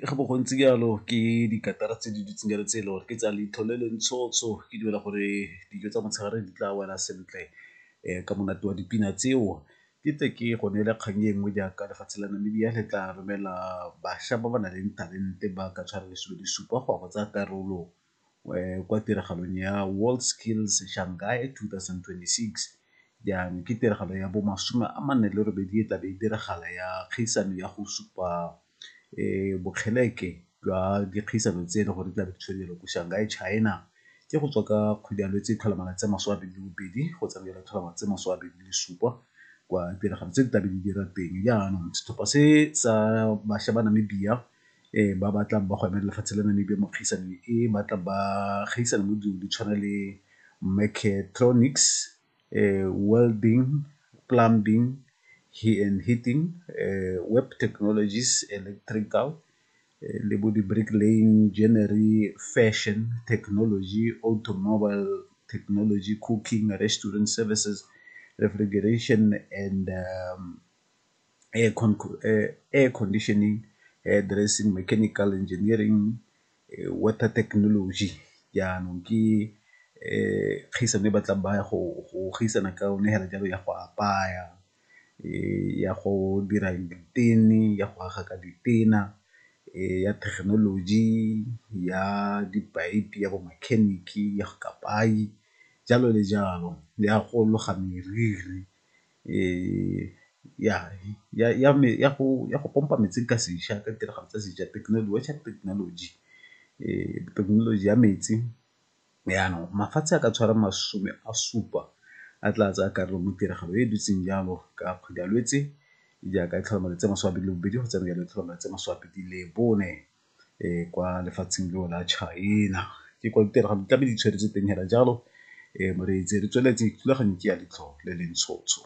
ga bo gontsi jalo ke dikatara tse di dutseng jalo tse e le gore ke tsa leitlho le le ntshotsho ke dumela gore dijo tsa motshegare di tla wela sentle ka monate wa dipina tseo. Ke tle ke go neele kgang e nngwe jaaka lefatshe la Namibia le tla romela bašwa ba ba nang le talente ba ka tshwara lesome le supa go ya go tsaya karolo kwa tiragalong ya World Skills Shanghai 2026. Jaanong ke tiragalo ya bomasome a mane le robedi e tlabe e diragala ya kgaisano ya go supa bokgeleke jwa dikgaisano tse e le gore di tlabe di tshwediwa ko Shanghai, China. Ke go tswa ka kgwedi ya Lwetse tlhola malatsi a masome a mabedi le bobedi go tsamaela tlhola malatsi a masome a mabedi le supa kwa tiragalo tse di tlabe di dira teng. Jaanong setlhopha se sa bašwa ba Namibia e ba batlang ba go emela lefatshe la Namibia mo kgaisanong e ba tla ba gaisana mo dilong di tshwana le mechatronics, welding, plumbing and heating, web technologies, electrical le bo di brick laying, joinery, fashion, technology, automobile technology, cooking, restaurant services, refrigeration and air con air conditioning, air dressing, mechanical engineering, water technology jaanong ke kgaisano e batlang ba ya go gaisana ka yone fela jalo ya go apaya, ya go dira ditene, ya go aga ka ditena, ya thekenoloji, ya dipayipi, ya bo makheniki, ya go kapayi jalo le jalo le ya go loga meriri ya go pompa metsi ka seša ka ditiragalo tsa seša technology thekenoloji ya metsi. Jaanong mafatshe a ka tshwara masome a supa a tla tsaya karolo mo tiragalo e e dutseng jalo ka kgwedi ya Lwetse jaaka e tlhola malatsi a masome a mabedi le bobedi go tsena jaanong e tlhola malatsi a masome a mabedi le bone. kwa lefatsheng leo la China ke kwa ditiragalo di tlabe di tshwere tse teng fela jalo moreetsi re tsweletse thulaganyo ke ya letlhoo le le ntshotsho.